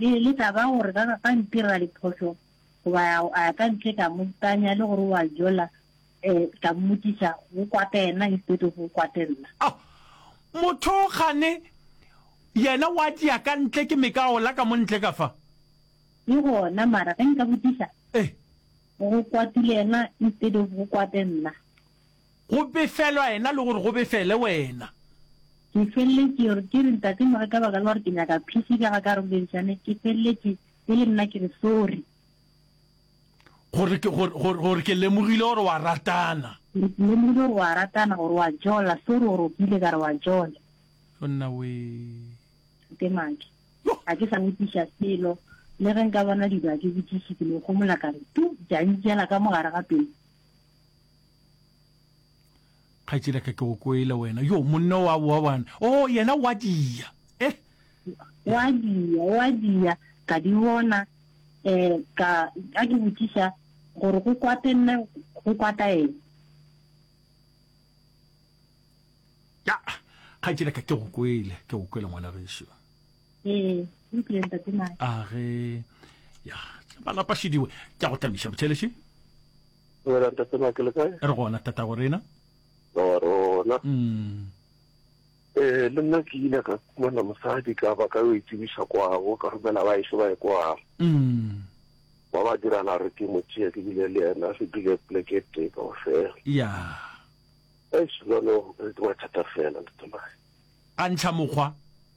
Le ile ka ba gore ka, ka ntirela diphošo, goba a, a ya ka ntle ka mo itanya, le gore o a jola, eh, ka mmotšiša, go kwate yena instead of go kwate nna. Oh, motho gane yena wa tšea ka ntle, ke meka ola ka mo ntle ka fa. Ke gona, mara ge nka botšiša, Eh. go kwatile yena instead of go kwate nna. Go befelwa yena le gore go befele wena. Ke feleletše gore ke re ntate mo re ka baka la gore ke nyaka phisi ka ga ka re boledišane ke feleletše e le nna ke re sorry. Gore ke gore gore ke lemogile gore wa ratana. Gore ke lemogile gore wa ratana gore wa jola sorry gore o kile ka re wa jola. Monna wee. Ke maki. Ga ke sa botiša selo le ge nka bona dilo a ke botiše ke no gomola ka re tu jantšela ka mogare ga pelo. kgaetši la ka ke go kwele wena yo monne wa boa bana o oh, yena wa dia e eh. wa dia wa dia ka di bona um ka ka ke botsiša gore go kwate nne go kwata eng ya kgaetši la ka ke go kwele ke go kwele ngwana gešo ee utlwile ntate mae a ge ya malapa šidiwe ke a go tlamiša bothelešhe Wena ntate Mike le kae? re gona tata go rena Wa rona. Mm. Eh le nna ke ile ka kumana mosadi ka ba ka yo itsebiša kwago ka romela ba ešo ba e kwago. Mm. Ba ba dirana re ke mo tšea ke bile le yena re dule pleke e tee ka ofela. Ya. Eish jwalo re ke mathata fela ntate mae. A ntlha mokgwa.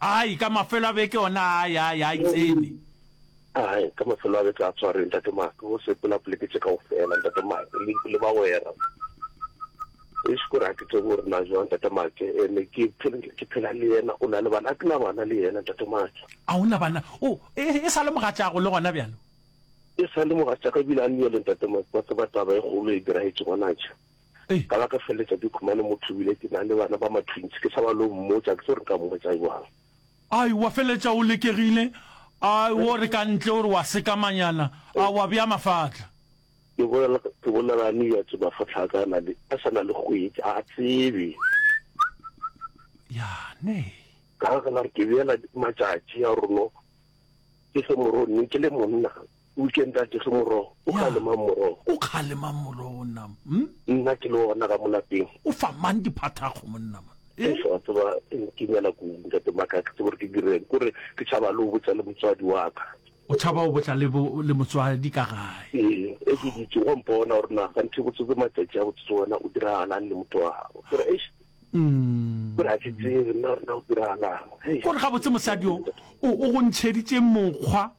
Ai, ka mafelo a beke ona a ya, ya e tsene. Ai, ka mafelo a beke a tshwareng, Ntate Mike, go sepela poleke tše kaofela, Ntate Mike, le, le bagwera. Eish, kore ga ke tsebe gore na jwang, Ntate Mike, and-e ke phel-, ke phela le yena, o na le bana? Ga ke na bana le yena, Ntate Mike. A o na bana? O, e, e sa le mogatša'ago le gona bjalo? E sa le mogatša'ka, ebile a nyele, Ntate Mike, wa tseba taba e kgolo e diragetše gona tšha. Ka la ka feleletša ke khumane motho ebile ke na le bana ba matwins, ke tšhaba lo mmotša, ke tlo re nka mmotša bjang. Ai, wa feleletša o lekegile, a wo re ka ntle o re wa sekamanyana, a wa bea mafahla. Ke bolela, ke bolela a niyatše mafahla a ka a na le, a sa na le kgwetši, a a tsebe. Yane. Ka la ka la re ke beela matšatši a gore no ke fe moroni ke le monna. O ke ntate ge morogo o kgalemang morogo. O kgalemang morogo nna mo. Nna ke le ona ga mo lapeng. O fa mang diphathakgo monna mo. Ee wa tseba ke nyala ku ntate maka ke tsebe gore ke direng kore ke tšhaba le o botsa le motswadi wa ka. O tšhaba o botla le le motswadi ka gae. Ee e ke dutše go mpona gore na ga nthe botsotse matšatši a botsotse wena o diragalang le motho wa gago gore eish gore a ke tsebe nna gore na o diragalang. Kore gabotse mosadi o o go ntšheditše mokgwa.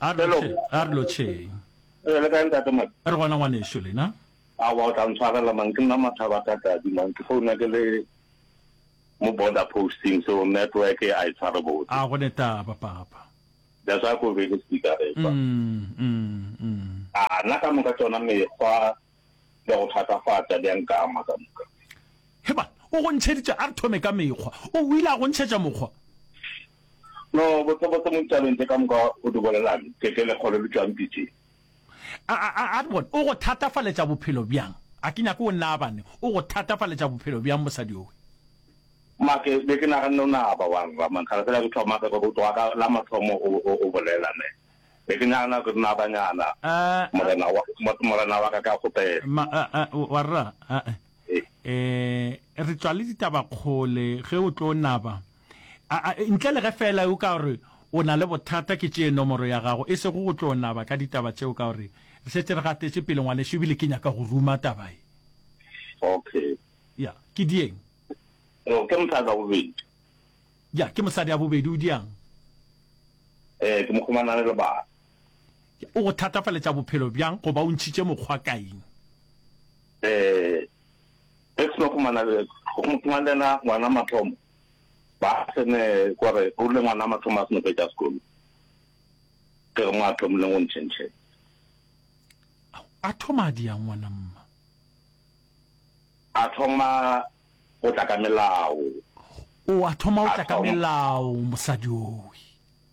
a re lo che a re lo che Eh, le kae ntate Maki? re gona ngwaneso lena Awa o tla ntshwarela mang ke nna mathaba ka tadi mang ke founa ke le mo border posting so network a e tshware botse. a gone taba papa That's why ko be le speaker re fa. mm, mm, mm. A na ka moka tsona mekgwa di a go thatafatša, di a nkama ka moka. He bana, o go ntšheditše, a re thome ka mekgwa. O o ile a go ntšhetša mokgwa? No, botsebotse mo ditabeng tše ka moka o di bolelang, ke, ke lekgolo le tšwang pitseng. A, a, a, a re bone, o go thatafaletša bophelo bjang? A ke nyake o nnaabane, o go thatafaletša bophelo bjang mosadi yowe? Ma, ke be ke naganne o naaba wa rra, man, kgale fela ke thoma, go tloga ka la mathomo o, o, o bolela, ne. Be ke nagana gore na banyana, morena wa, morena wa ka, ka kgopela. Ma, a, a, warra, a, a, eh, re tšwa le ditaba kgole, ge o tlo naba, a, a, ntle le ge feela o ka gore o na le bothata, ke tšee nomoro ya gago, e sego go tlo naba ka ditaba tšeo, ka gore re šetše re gatetše pele, ngwanešu, e bile ke nyaka go ruma taba ye. Okay. Ya, ke dieng? No, ke motho a ka bobedi. Ja, ke mosadi ya bobedi, o diang? Ee, ke mokgomana a ne le bana. Ja, o go thatafaletša bophelo bjang goba o ntšhitše mokgwa kaeng? Ee, ge ke no khomana le khomana le na ngwana mathomo ba sene gore o le ngwana mathomo a sene go ja sekolo ke mo a thomile go ntšhentšhe a thoma di ya ngwana mma a thoma o tla ka melao. O a thoma o tla ka melao, mosadi owi.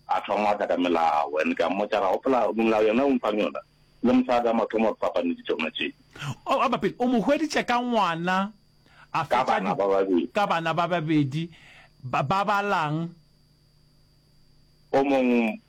A thoma o tla ka melao, and ka mmotša ra gopola melao yona o mfang yona, le mosadi a mathomo re fapane di tsona tše. O a bapele, o mo hweditše ka ngwana, a fetša ka bana ba babedi, ka bana ba babedi, ba balang. O mong.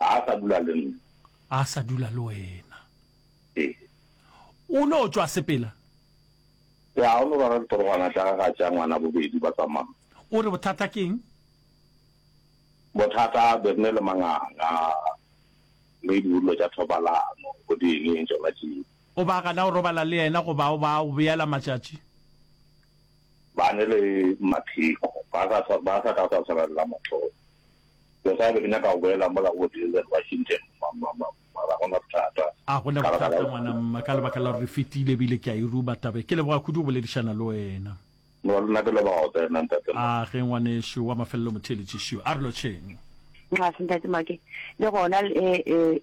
A a sa dula le nna. A a sa dula le wena. Ee. O no tšwa sepela? Ya, o no rwala diporogwana tša gagwe a tšea ngwana bobedi ba tsamaya. O re bothata ke eng? Bothata be re ne le manganga le dilo tša thobalano bo di eng eng tšona tšeo. O ba gana go robala le yena goba o ba go beela matšatši? Ba ne le mapheko, ba sa ka sa swarelela motho. Mosadi, Ke nyaka go boela mola go Denzel Washington, ma, ma, ma, ma, ga go na bothata. A go na bothata, ngwana mma, ka lebaka la gore re fetile, ebile ke a e ruma taba e. Ke leboga kudu go boledišana le wena. No, le nna ke leboga go tsena, Ntate Mma. A ge ngwanešu wa mafelelo motheeletši šo. A re lotšheng. Nxa, Ntate Mma, ke le gona, e, e.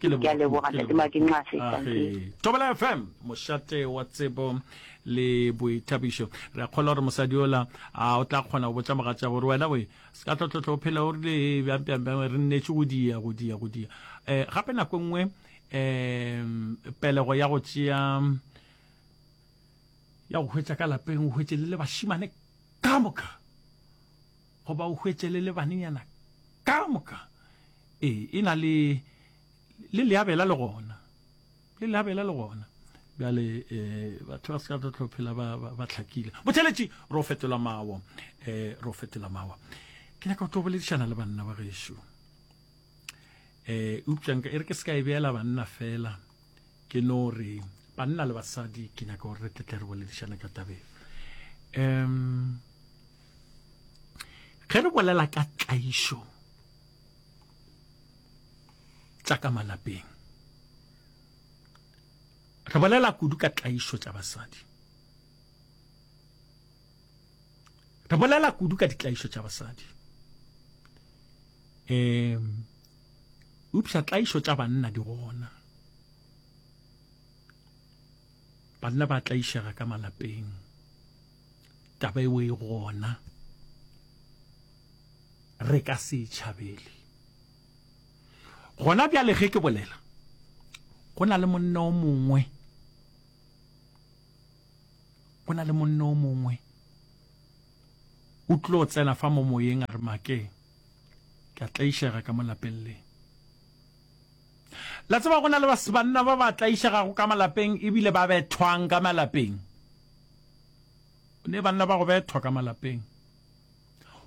Ke leboga. Ke a leboga, Ke Ntate Maki, leboga. nxase, thank you. Ahe. Thobela FM, mošate wa tsebo le boithabišo. Re a kgolwa gore mosadi ola a o tla kgona go botša mogatša gore wena we se ka tlotlotlho o phela o rile "Ee, bjang bjang bjang re nnetše go dia go dia go dia um gape nako e nngwe um pelego ya go tšea ya go hwetša ka lapeng o hwetše le le bašimane ka moka Goba o hwetšele le banenyana ka moka. Ee, e na le, le leabela le gona. Le leabela le gona. Bjale, e, batho ba se ka tla tlo phela ba, ba, ba hlakile. Botheletši, ro fetola mawo. E, ro fetola mawo. Ke nyaka go tlo boledišana le banna ba gešo. E, eupša nka e re ke se ka e beela banna fela. ke no re banna le basadi ke nyaka gore re tletle re boledišane ka tabeng um ge re bolela ka tlaišo tša ka malapeng re bolela kudu ka tlaišo tša basadi re bolela kudu ka ditlaišo tša basadi um Eupša tlaišo tša banna di gona. Banna ba tlaišega ka malapeng. Taba eo e gona. Re ka se e tšhabele. Gona bjale ge ke bolela, go na le monna o mongwe go na le monna o mongwe o tlo tsena fa mo moyeng a re makeng ke a tlaišega ka mo lapeng le la tseba go na le basebanna ba ba tlaišegago ka malapeng ebile ba bethwang ka malapeng o ne banna ba go bethwa ka malapeng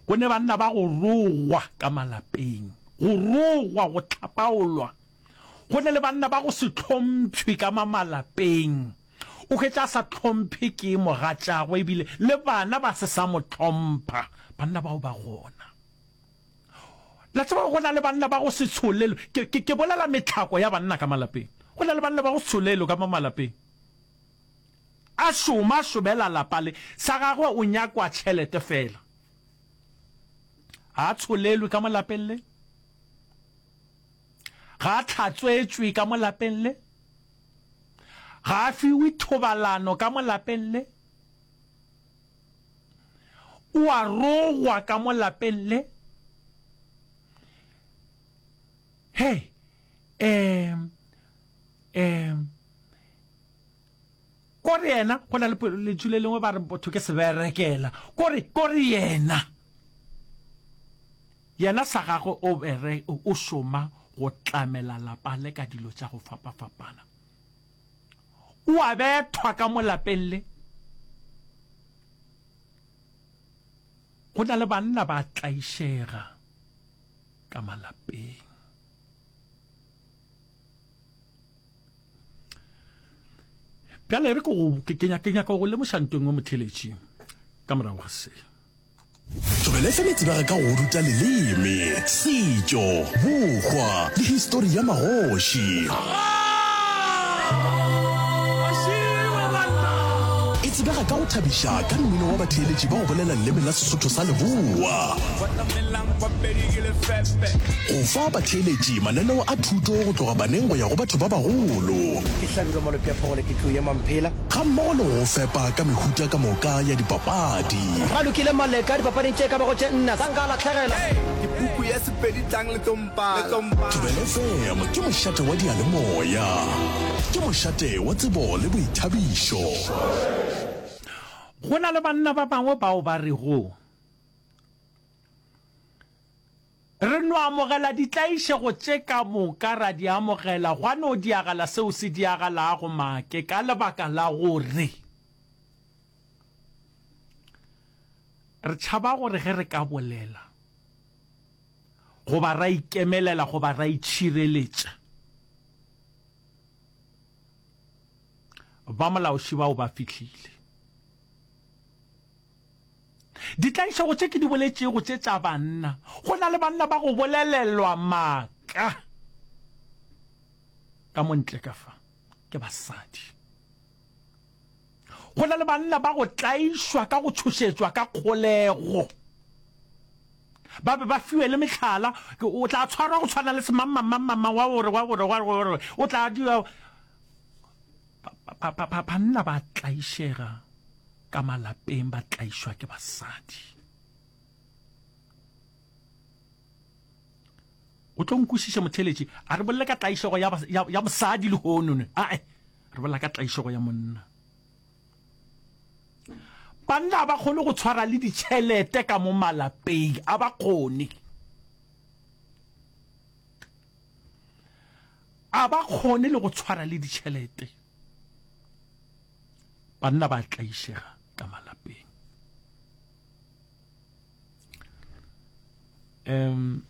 go ne banna ba go rogwa ka malapeng go rogwa go tlhapaolwa go ne le banna ba go se tlhompšhwe ka mamalapeng O hwetša a sa hlomphe ke mogatšagwe ebile le bana ba se sa mo hlompha. Banna bao ba gona. La tseba go na le banna ba go se tsholelo. Ke, ke, ke bolela metlhako ya banna ka malapeng. Go na le banna ba go se tsholelo ka mo malapeng. A šoma, a šomela lapa le. Sa gagwe o nyakwa tšhelete fela. Ga a tsholelwe ka mo lapeng le. Ga a tlhatswetšwe ka mo lapeng le. Ga a fiwe thobalano ka mo lapeng le. O a rogwa ka mo lapeng le. Hey, um, um, Kore yena, go na le po, letšu le lengwe ba re botho ke seberekela. Kore, kore yena, yena sa gagwe o bere, o, o šoma go tlamela lapa le ka dilo tša go fapafapana. O a bethwa ka mo lapeng le. Go na le banna ba tlaišega ka malapeng. bjale re ke nyaka go lemoša nto engwe motheletši ka morago ga se tlogele fela tsebega ka go ruta leleme setšo bokgwa le histori ya magoši e tsebega ka go thabiša ka mmino wa batheeletši ba go bolela leleme la sesotho sa leboa Go fa batheeletši mananeo a thuto go tloga baneng go ya go batho ba bagolo. Ke hlabile malope a phogolo ke tlo ema mphela. Gammogo le go go fepa ka mehuta ka moka ya dipapadi. Ba lokile Maleka dipapading tše e ka bago tše nne, sa nka a lahlegela. Ke puku ya Sepedi tlang le tlo mpala. Thobela FM ke mošate wa diyalemoya. Ke mošate wa tsebo le boithabišo. Go na le banna ba bangwe bao ba rego. Re no amogela ditlaišego tše ka moka, ra di amogela, gwa no diagala seo se diagalago, make, ka lebaka la gore re tšhaba gore ge re ka bolela, goba ra ikemelela, goba ra itšhireletša, ba molaoši bao ba fihlile. Ditlaišego tše ke di boletšego tše tša banna, go na le banna ba go bolelelwa maaka ka mo ntle ka fa ke basadi. Go na le banna ba go tlaišwa ka go tšhošetšwa ka kgolego, ba be ba fiwe le mehlala, o tla tshwarwa go tshwana le semangmangmangmang wa gore wa gore wa gore o tla dira Banna ba tlaišega ka malapeng, ba tlaišwa ke basadi. O tlo nkwešiša motheletši, a re bolle ka tlaišego ya mosadi le honone, ae re bolla ka tlaišego ya monna. Banna ga ba kgone go tshwara le ditšhelete ka mo malapeng, a ba kgone. A ba kgone le go tshwara le ditšhelete. Banna ba tlaišega ka malapeng. Um,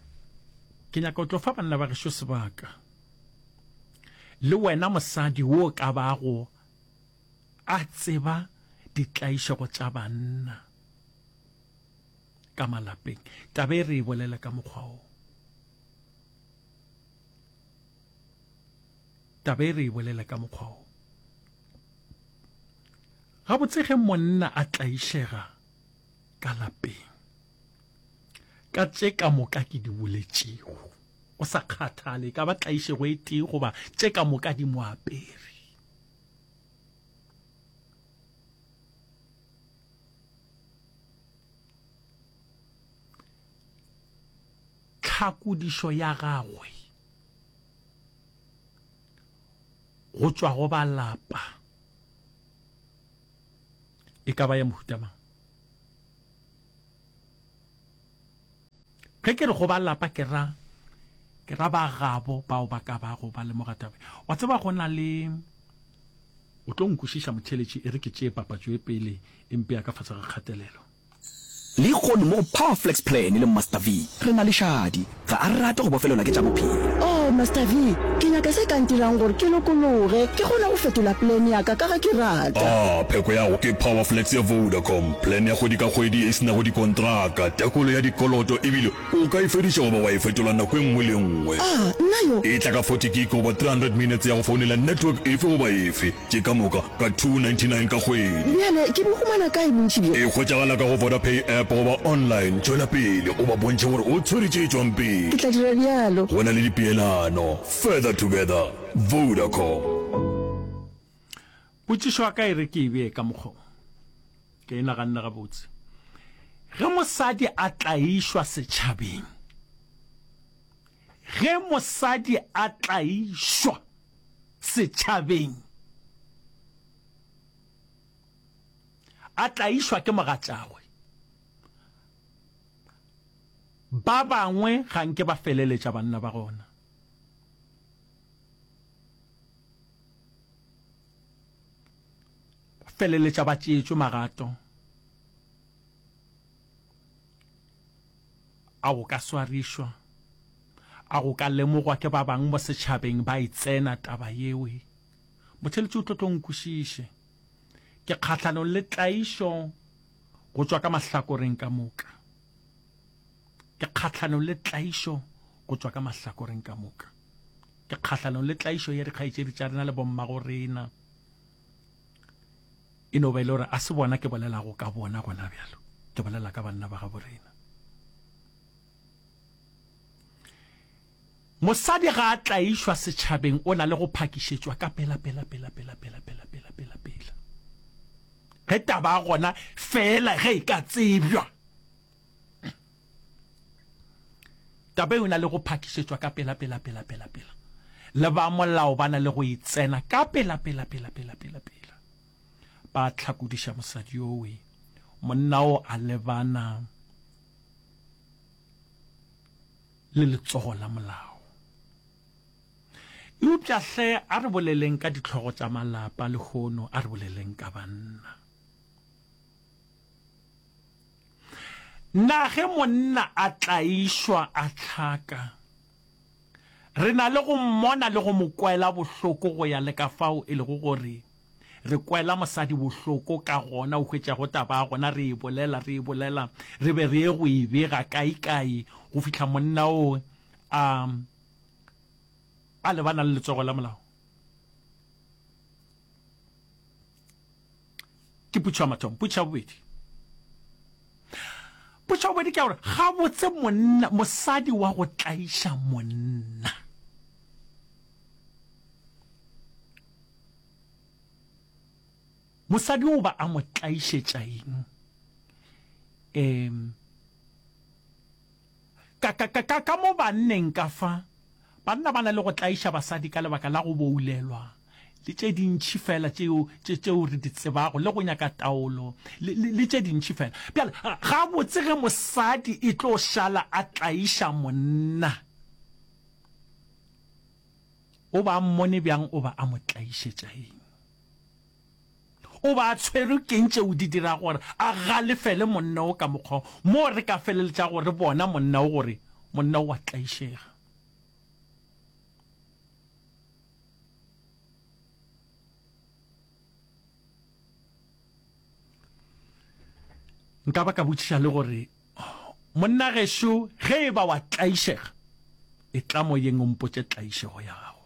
ke nyaka go tlo fa banna ba gešo sebaka le wena mosadi wo ka bago a tseba ditlaišego tša banna ka malapeng tabe re e bolela ka mokgwa o Taba e re e bolele ka mokgwa wo. Gabotse ge monna a tlaišega ka lapeng ka tše ka moka ke di boletšego, go sa kgathale e ka ba tlaišego e tee goba tše ka moka di mo apere, Tlhakodišo ya gagwe go tšwa go ba lapa e ka ba ya mohuta mang? Ge ke re go ba lapa ke ra ke ra ba gabo bao ba ka bago ba lemoga taba. Wa tseba go na le o tlo nkwešiša motheletši e re ke tšee papatšo e pele e mpea ka fase ga kgatelelo. Lehono mo go Power Flex Plan le Master V, re na le šadi. Ga a rate go bofelelwa ke tša bophelo. Oh, Master V, ke nyaka se ka ntirang gore ke lokologe, ke kgone go fetola plan ya ka, ka ge ke rata. Ah, pheko ya go ke Power Flex ya Vodacom, plan ya kgwedi ka kgwedi e se nago dikontraka, tekolo ya dikoloto ebile o ka e fediša goba wa e fetola nako e nngwe le e nngwe. Ah, nna yo! E tla ka forty gig goba three hundred minutes ya go founela network efe goba efe. Ke ka moka ka 299 ka kgwedi. Bjale ke bo humana kae bontši bjo? E hwetšagala ka go Vodapay app goba online. Tšwela pele o ba bontšhe gore o tshwere tše tšwang pele. Ke tla dira bjalo. Go na le dipeelano. Further together. Vodacom. Potšišo ya ka e re ke e bee ka mokgwa wo. Ke e naganne gabotse. Ge mosadi a tlaišwa setšhabeng, ge mosadi a tlaišwa. setšhabeng. A tlaišwa ke mogatšagwe. Ba bangwe ga nke ba feleletša banna ba gona. feleletša ba tšeetšwe magato A go ka swarišwa? A go ka lemogwa ke ba bang mo setšhabeng ba e tsena taba yeo? Motheletši o tlo tlo nkwešiše. Ke kgahlanong le tlaišo go tšwa ka mahlakoreng ka moka. Ke kgahlanong le tlaišo go tšwa ka mahlakoreng ka moka. Ke kgahlanong le tlaišo ya dikgaetšedi tša rena le bommagorena. e no ba e le gore a se bona ke bolelago ka bona gona bjalo ke bolela ka banna ba gabo rena mosadi ga a tlaišwa setšhabeng o na le go phakišetšwa ka pela pela pela pela pela pela pela pela pela ge taba gona fela ge e ka tsebjwa Taba e na le go phakišetšwa ka pela pela pela pela pela. Le ba molao ba na le go e tsena ka pela pela pela pela pela pela. Ba tlhakodiša mosadi yowe. Monna o a lebana le letsogo la molao. Eupša hle a re boleleng ka ditlhogo tša malapa lehono, a re boleleng ka banna. Na ge monna a tlaišwa a hlaka, re na le go mmona le go mo kwela bohloko go ya le ka fao e lego gore re kwela mosadi bohloko ka gona? O hwetša go taba ya gona re e bolela, re e bolela, re be re ye go e bega kaekae go fihla monna o a, a lebana le letsogo la molao. ke putšo ya mathomo putšo ya bobedi putšo ya bobedi ke ya gore ga botse monna mosadi wa go tlaiša monna mosadi o ba a mo tlaišetša eng um Ka, ka, ka, ka, ka mo banneng ka fa, banna ba na le go tlaiša basadi ka lebaka la go boulelwa, le tše dintši feela tšeo, tše, tšeo re di tsebago, le go nyaka taolo, le, le, le tše dintši feela. Bjale, gabotse ge mosadi e tlo šala a tlaiša monna, o ba a mmone bjang, o ba a mo tlaišetša eng? O be a tshwerwe ke'ng tšeo di dirago gore a galefele monna wo ka mokgwa wo, moo re ka feleletšago re bona monna wo gore monna wo o a tlaišega? Nka ba ka botšiša le gore, Monna gešo, ge e ba wa tlaišega, e tla moyeng o mpotše tlaišego ya gago.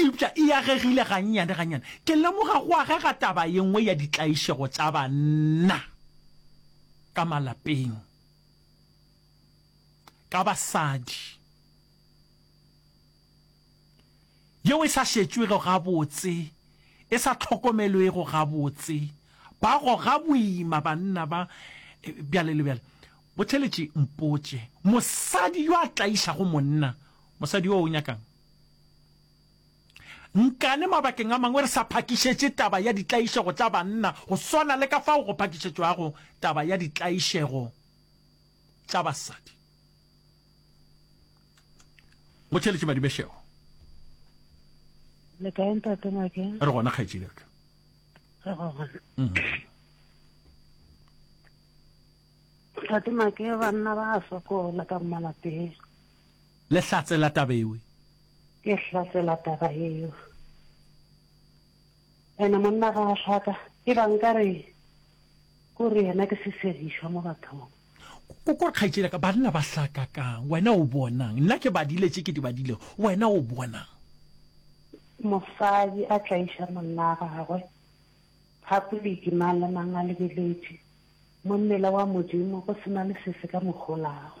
Eupša e agegile gannyane-gannyane. Ke lemoga go agega taba ye nngwe ya ditlaišego tša banna ka malapeng, ka basadi, yeo e sa šetšwego gabotse, e sa hlokomelwego gabotse. Ba goga boima banna ba, bjale le bjale. Botheeletše, mpotše, mosadi yo a tlaišago monna, mosadi yoo o nyaka'ng? Nkane mabakeng a mangwe re sa phakišetše taba ya ditlaišego tša banna go swana le ka fao go phakišetšwago taba ya ditlaišego tša basadi. Go theeletše Madibešego. Le kae ntate Make? Re gona kgaetšedi ka. Re gona. Mm-hmm. Ntate Make banna ba sokola ka malapeng. Le hlatse la taba ewe. Ke hlatse la taba eo. Ene monna ga a hlaka, e ba nka re ko re yena ke sesedišwa mo bathong. Ko ko kgaitšedi ka banna ba hlaka kang? Wena o bonang? Nna ke badile tše ke di badile, wena o bonang? Mosadi a tlaiša monna a gagwe phapoliki mang le mang a lebeletše, mo mmele wa Modimo go se na le sese ka mo kgolago.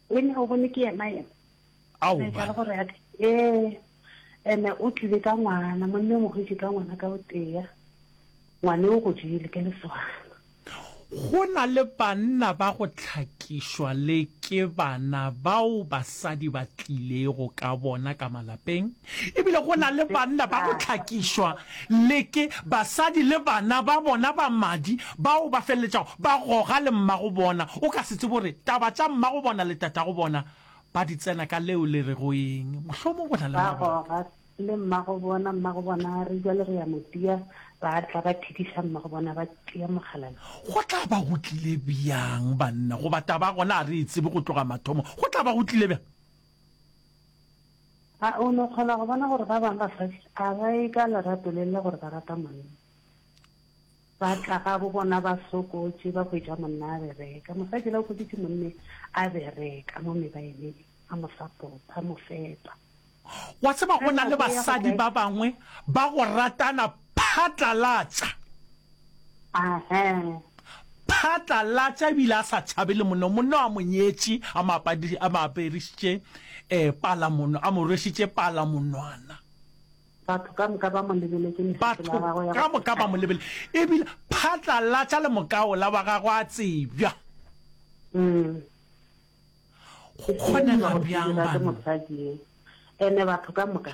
Ene o bone ke yena yena. Ao ba. Ka gore ya eh ene o tlile ka ngwana mo nne mo gotse ka ngwana ka o teya. Ngwane o go jile ke le swana. Go na le banna ba go tlhakišwa le ke bana bao basadi ba tlilego ka bona ka malapeng. E bile go na le banna ba go hlakišwa le ke basadi le bana ba bona ba madi bao ba feleletšago ba goga le mmagobona. O ka se tsebe gore taba tša mmagobona le tatagobona ba di tsena ka leo le rego eng. Mohlomong go na le mabaka. Ba goga le mmagobona, mmagobona a re, Bjale re ya mo tia. Ba tla ba thidiša mmagobona, ba tia mokgalabje. Go tla ba go tlile bjang, banna? Goba taba gona ga re e tsebe go tloga mathomo. Go tla ba go tlile bjang? A o no kgona go bona gore ba bangwe ba Kriste a ba e ka lerato le le gore ba rata monna? Ba tla gabo bona ba sokotše, ba hwetša monna a bereka. Mosadi la o hweditše monne a bereka mo mebaeneng, a mo sapota, a mo fepa. Wa tseba go na le basadi ba bangwe ba go ratana Phatlalatša. Ahee. Phatlalatša ebile a sa tšhabe le monna. Monna a mo nyetše, a mo a mo aperišitše um palamono, a mo rwešitše palamonwana. Batho ka moka ba mo lebeletše mešetelo ya gagwe ya go. Batho ka moka ba mo lebele. Ebile phatlalatša le mokaola wa gagwe a tsebja. Mm. Go kgonega bjang banna? Mosadi e. Ene batho ka moka.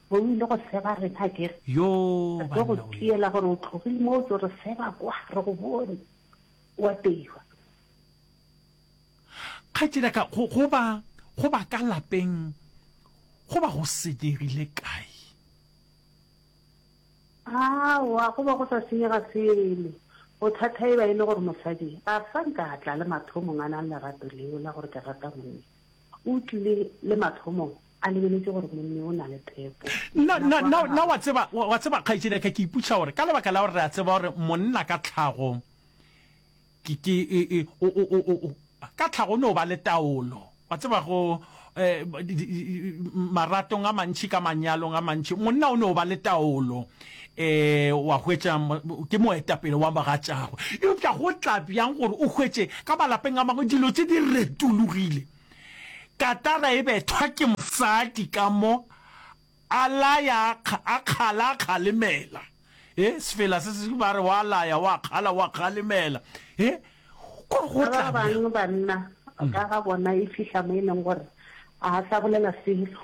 Bo o ile go seba rena ke re. Yoo Re tlo go banna we. tiela gore o tlogile mo o tlo re seba kwa re go bone o a teiwa. Kgaetšedi ya ka, go, go ba, go ba ka lapeng go ba go senyegile kae? Aowa, go ba go sa senyega selo. Bothata e ba e le gore mosadi ga a sa nka a tla le mathomong a nang lerato leo la gore ke rata monna. O tlile le mathomong a lebeletše gore monni o na le phepo. Na, na, na, na wa tseba, wa, wa tseba kgaetšedi ya ka, ke ipuša gore ka lebaka la gore re a tseba gore monna ka tlhago ke, ke, e, e, o, o, o, o, ka tlhago o no ba le taolo, wa tseba, go, eh, di, di, maratong a mantši, ka manyalong a mantši, monna o no ba le taolo. e wa hwetša ke moetapele wa bagatšagwe eupša go tla bjang gore o hwetše ka malapeng a mangwe dilo tse di retologile katara e bethwa ke mosadi ka mo a laya a kgala a kgalemela e sefela se se ba re wa laya wa kgala wa kgalemela e gore go tla bjang banna ka ga bona e fihla mo e leng gore a sa bolela selo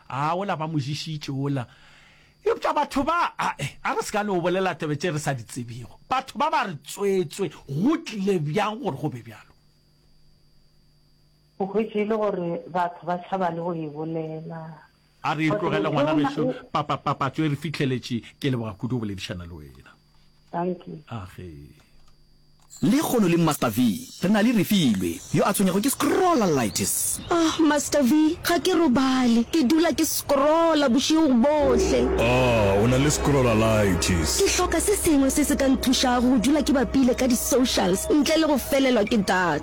A ola ba mo ješitše ola. Eupša batho ba, a, a re se ka no bolela tebe tše re sa di tsebego. Batho ba ba re, Tsweetswe, go tlile bjang gore go be bjalo? O hwetše e le gore batho ba tšhaba le go e bolela. A re e tlogele, ngwana gešo. Papa, papatso e re fihleletše. Ke leboga kudu go boledišana le wena. Thank you. Age. Lehono le Master V re na le Refilwe yo a tshwenyego ke scrollalitis. Ahh Master V ga ke robale ke dula ke scrolla bošego bohle. Ahh o na le scrollalitis. Ke hloka se sengwe se se ka nthušago go dula ke bapile ka di socials ntle le go felelwa ke data.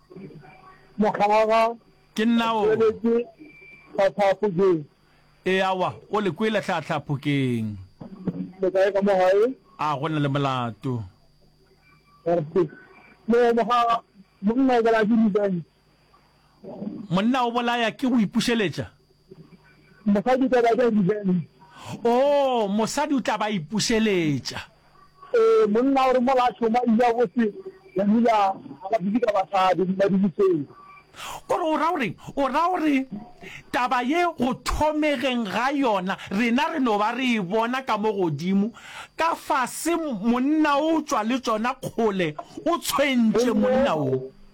Mokgaga, Ke nna o. Tšweletše Tlhatlhaa Phokeng. Ee, aowa, o le kwele Tlhatlhaa Phokeng. Le kae ka mo gae? A go na le molato? Ee, Mokgaga, monna o bolaya ke revenge. Monna o bolaya ke go ipušeletša? Mosadi o tla ba ja revenge. Oo, mosadi o tla ba ipušeletša. Ee, monna o re mola a šoma ile a bose ya nula ga ba dule ka basadi mo madiliseng. O re, o ra gore, o ra gore taba ye go thomegeng ga yona rena re no ba re e bona ka mo godimo ka fase, monna o tšwa le tšona kgole o tshwentše monna wo.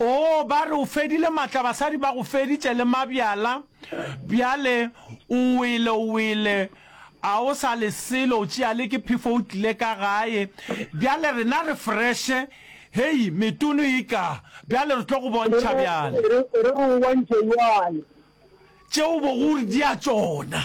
Oo, ba re o fedile matla, basadi ba go feditše le mabjala, bjale o wele, o wele, a o sa le selo, o tšea le ke phefo o tlile ka gae. Bjale rena re freshe, hei, metunu e ka, bjale re tlo go bontšha bjale. Re, re, re o bontšhe bjale. Tše o bogo o re di a tšona.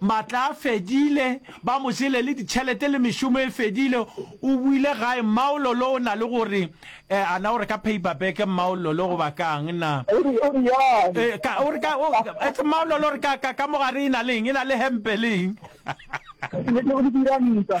Matla a fedile, ba mo jele le ditšhelete le mešomo e fedile. O boile gae. Mmaololo o na le go re, Eh, a na o re ka paperback, Mmaololo, goba ka'ng na? O re, o re yang? Eh, ka, o re ka, o, etse Mmaololo, o re ka, ka, ka mo gare e na leng? E na le hempe le eng? Ke, ke, ke, o di dira ntwa.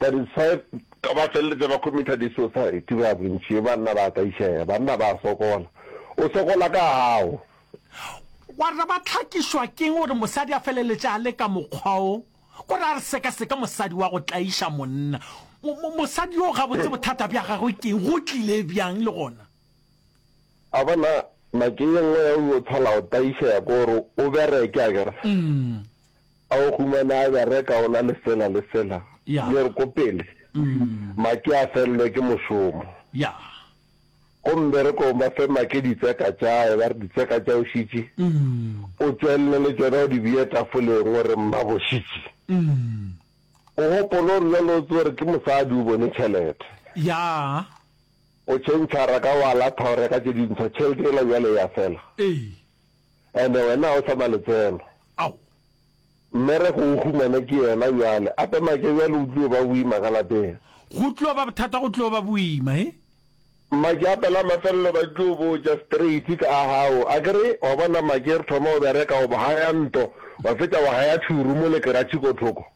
Ka di tshepa ba feleletša ba committer di suicide ba bontši banna ba ka išega banna ba sokola o sokola ka gago. Wa re ba hlakišwa keng gore mosadi a feleletša a le ka mokgwa wo kore a re sekaseka mosadi wa go tlaiša monna mosadi yo gabotse bothata bja gagwe keng go tlile bjang le gona. A bona nake ye nngwe ya o yo tshwala go tlaišega kore o bereke akere A o humana a bereka o na le sela le sela? Yeah. Yer ko pele. Mm. Maki a fellwe ke mošomo. Yeah. Ko mberekong ba fe Maki ditseka tša hae ba re ditseka tša Oshitši Mm. o tšwelele le tšona o di beye tafoleng o re Mmaboshitši Mm. o gopole gore bjalo o tsere ke mosadi o bone tšhelete. Yeah. O tšhentšhara ka wa latha o reka tše dintsho tšhelete yela bjale ya fela. Ee. and wena ga o sa na letseno. Ao! Mme re go o humane ke yena bjale. Ape Make, bjale go tliyo ba boima ka lapeng. Go tliyo ba bothata, go tliyo ba boima, he? Make, Ape la mafelelo ba tliyo botša straight ka gago. A ke re, wa bona Make, re thoma go bereka, wa bo haya nto, wa fetša wa haya two room le keratšhe ko thoko.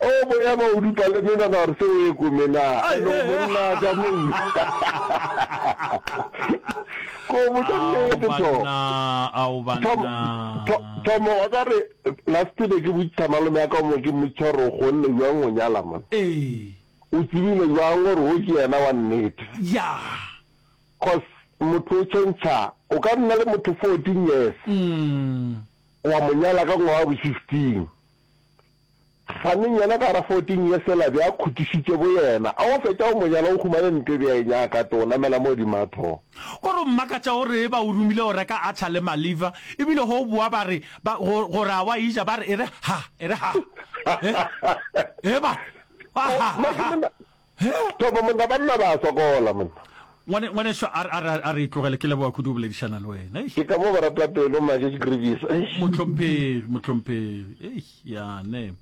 O boya ba o dupa le mena ba re se o e komena. Alo monna ka mong. Ko botsa nnete to. Banna ao banna. Thomo wa ka re last be ke botsa malome ya ka mo ke motshwa re go nne jwang go nyala man. Ee. O tsebile jwang gore o ke yena wa nnete. Ya. Cause motho o change o ka nna le motho 14 years. Mm. Wa mo nyala ka ngwaga wa bo 15. Faneng yena ka ra fourteen ye sela be a khutišitše bo yena. A o fetša go mo nyala o humane ntwe be a e nyaka too namela mo godimo a tho. O re mmakatša o re ba o romile go reka atchar le maliver ebile go o boa ba re ba go go re a wa eja ba re e re ha e re ha e e ba re wa ha ha ha. He! Topo monna, banna ba a sokola monna. Ngwane, ngwaneso a, a, a re e tlogele, ke leboga kudu go boledišana le wena. Eish. Ke ka mo boratapelo ma ke grevies. Eish. Mohlomphegi, mohlomphegi. Eish, yane.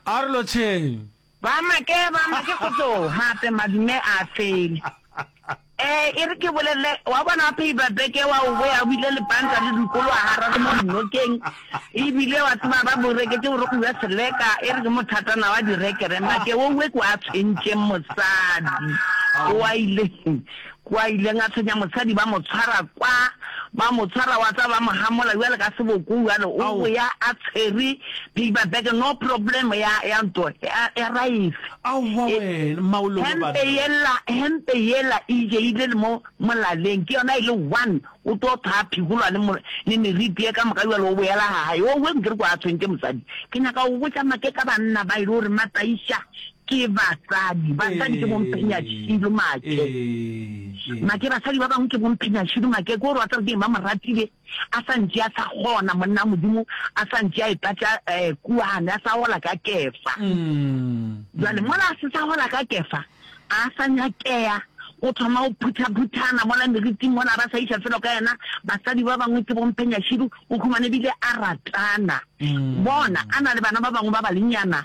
a re lotšheng. Ba make, ba make go tlo, gape madume a fele. Ee, e re ke bolelele, wa bona wa phayiba beke wa obo ya buile lepanta le dikolo wa hararo mo dinokeng, e bile wa tseba ba bo reketse gore go uwe seleka, e re ke mothatana wa direkere, make wo uwe kwa tshwentšeng mosadi, kwa ile, kwa ileng a tshwenya mosadi ba mo tshwara kwa, ba mo tshwara wa tseba ba mo hamola uwale ka seboko uwale, o boya a tshwere phayiba beke, no problem ya, ya nto, ya, ya raese. Aowa E, wena, maolo wa hempe banna. yela, hempe yela e jeile le mo molaleng, ke yona e le one, o tlo thaya phigolwa le mo, le meriti ye ka moka bjalo o boela ga gae. Owe, nke re kwa a tshwentše mosadi. Ke nyaka go botša make ka banna ba e le gore Mataiša ke basadi. Basadi ke bomphenyashilo, Ee, make. ee, ee. Make, basadi ba bangwe ke bomphenyashilo, make. Ke gore wa tseba ke eng, ba mo ratile. A sa ntše a sa kgona, monna wa Modimo a sa ntše a eta tša um kuane, a sa hola ka Kefa. Bjale mola a se sa hola ka Kefa, a sa nyakea, o thoma go phutha-phuthana mola meriting mola, ba sa iša felo ka yena. Basadi ba bangwe ke bompenyashidu, o humane bile a ratana, bona, a na le bana ba bangwe ba balenyana.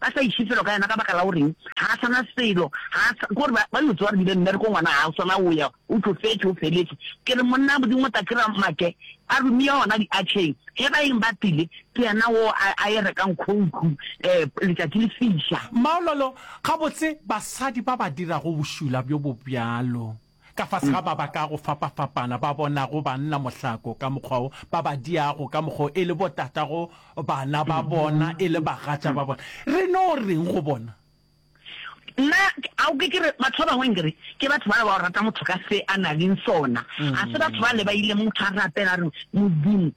Ba sa iše felo ka yena ka baka la goreng ga a sana selo, ga a sa, kore ba, ba yo tsewa re bile mmereko ngwana ga o sana o ya, o tlofetše, o feletše. Ke re monna Modimo o tla kira make a romia gona diatšheng, ge ba eng ba tlile, ke yena wo a, a e rekang khouku um letšatši le fiša. Maololo, Gabotse basadi ba ba dirago bošula bjo bobjalo. Ka fase ga ba ba ka go fapafapana ba bonago banna mohlako ka mokgwa wo, ba ba diago ka mokgwa wo e le botatago bana ba bona e le bagatša ba bona, re no reng go bona? Nna a o ke ke re, batho ba bangwe nke re ke batho ba ba go rata motho ka se a naleng sona, ga se batho bale ba ile motho a rapela a re, Modimo,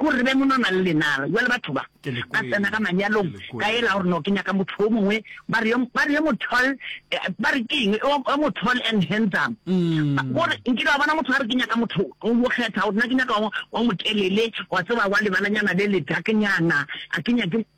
Go re be mo no na le lenala, bjale batho ba, ba tsena ka manyalong, ka yela gore no ke nyaka motho yo mongwe, ba re yo, ba re yo mo tall, ba re ke eng, yo, yo mo tall and handsome. Go re, nkile wa bona motho a re ke nyaka motho, o mo kgetha, o re na ke nyaka wa, wa motelele, wa tseba wa lebalanyana le le dark-nyana, a ke nyake,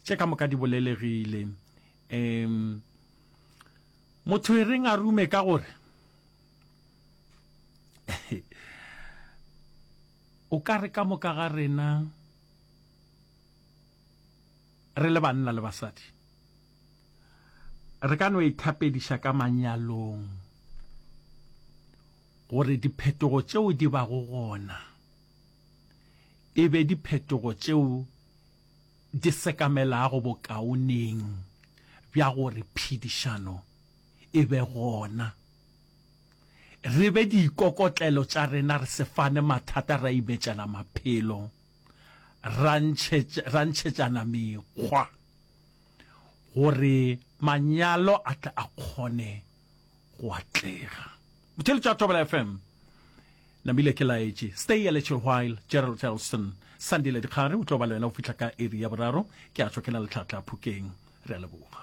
Tše ka moka di bolelegile. Um, motho e reng a rume ka gore o ka re ka moka ga rena re le banna le basadi re ka no ithapediša ka manyalong gore diphetogo tšeo di bago gona e be diphetogo tšeo di sekamelago bokaoneng bja gore phedišano e be gona, re be dikokotlelo tša rena re se fane mathata ra ibetšela maphelo, ra ntšhetša, ra ntšhetšana mekgwa gore manyalo a tle a kgone go atlega. Botšhelo tša Thobela FM. Namile ke laetše. Stay a little while, Gerald Elston. Sandile Dikgare o tlo ba le wena go fihla ka iri ya boraro. Ke a tšwa ke na le tlhatla phokeng. Re a leboga.